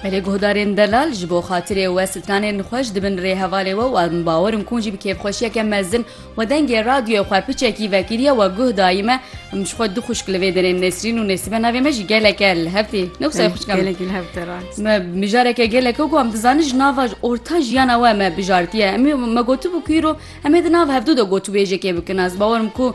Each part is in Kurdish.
Belê guhdarên delal ji bo xatirê we stranên xwe ji dibin rê hevalê we û em bawer in ku jî bi kêfxweşiyeke mezin we dengê radyoyê xwe piçekî vekiriye we guh dayî me em ji xwe du xwişk li vê derê Nesrîn û Nesîbe navê me jî geleke li hev tê ne wisa xwişka me Gelekî li hev te rast. me mijareke geleke ku em dizanin ji nava orta jiyana we me bijartiye em ê me gotibû ku îro em ê di nav hevdû de gotûbêjekê bikin ez bawer im ku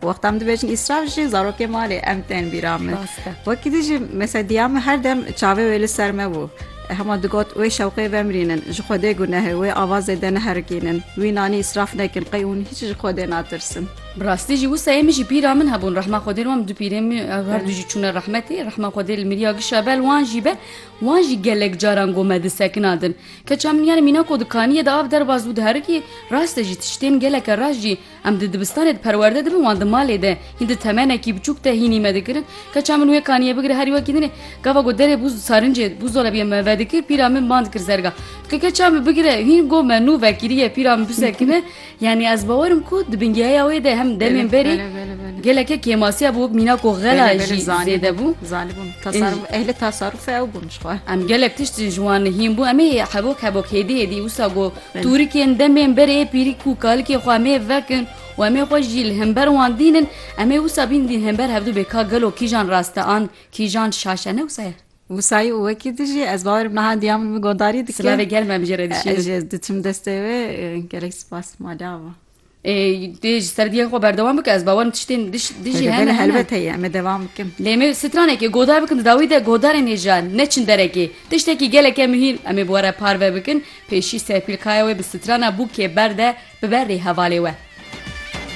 Wexta min dibêjin îsraf jî zarokê malê em tên bîra min. Wekî dî jî mesela diya min her dem çavê wê li ser me bû. Hema digot wê şewqê vemirînin, ji Xwedê gunehê, wê avazê de neherikînin, wî nanî îsraf nekin, qey hûn hîç ji Xwedê natirsin. Bi rastî jî wisa ê min jî bîra min hebûn rehma Xwedê li wan du pîrên min ew her du jî çûne rehmetê. Rehma Xwedê li mirîya giş e be li wan jî be. Wan jî gelek caran got me di sekina din. Keça min yanê mînako di kaniyê de av derbas bû diherikî. Rast e jî tiştên geleke rast jî Em di dibistanê di perwerde dibin wan di malê de hîn di temenekî biçûk de hînî me dikirin. Keça min wê kaniye bigire herî wekî dinê. Gava ku derê bûz sarincê bûzolabiye me vedikir pîra min band kir zerga. Dike keça min bigire hîn got me nû vekiriye pîra min bisekine. Yanî ez bawer im ku di bingeheya wê de hem demên berê geleke kêmasiya bû wek mîna ku xela jî zêde bû. Zanîbûn tasarûf ehli tasarûf ew bûn jixwe. Em gelek tişt ji wan hîn bû em ê hebok hebok hêdî hêdî wisa ku Tûrikên demên berê pîrî ku kalikê xwe em ê vekin û em ê xwe jî li hember wan dînin, em ê wisa bînin dîn hember hevdû bê ka gelo kîjan rast e an kîjan şaş e ne wisa ye. Wisa ye û wekî tu jî ez bawer meha diya min bi guhdarî dikin. Silavê gel me bijî re dişînin. Ez jê diçim destê wê gelek spas maliya bo. Dê ji serdiyê xwe berdewam bike ez bawerim tiştên dijî hene helbet heye em devam bikim. Lê me stranekê godar bikim dawî de godarên hêja neçin derekê. Tiştekî geleke mihîm em ê bi we re parve bikin, pêşî serpîlkaya wê bi strana bûkê berde bibe rê hevalê we.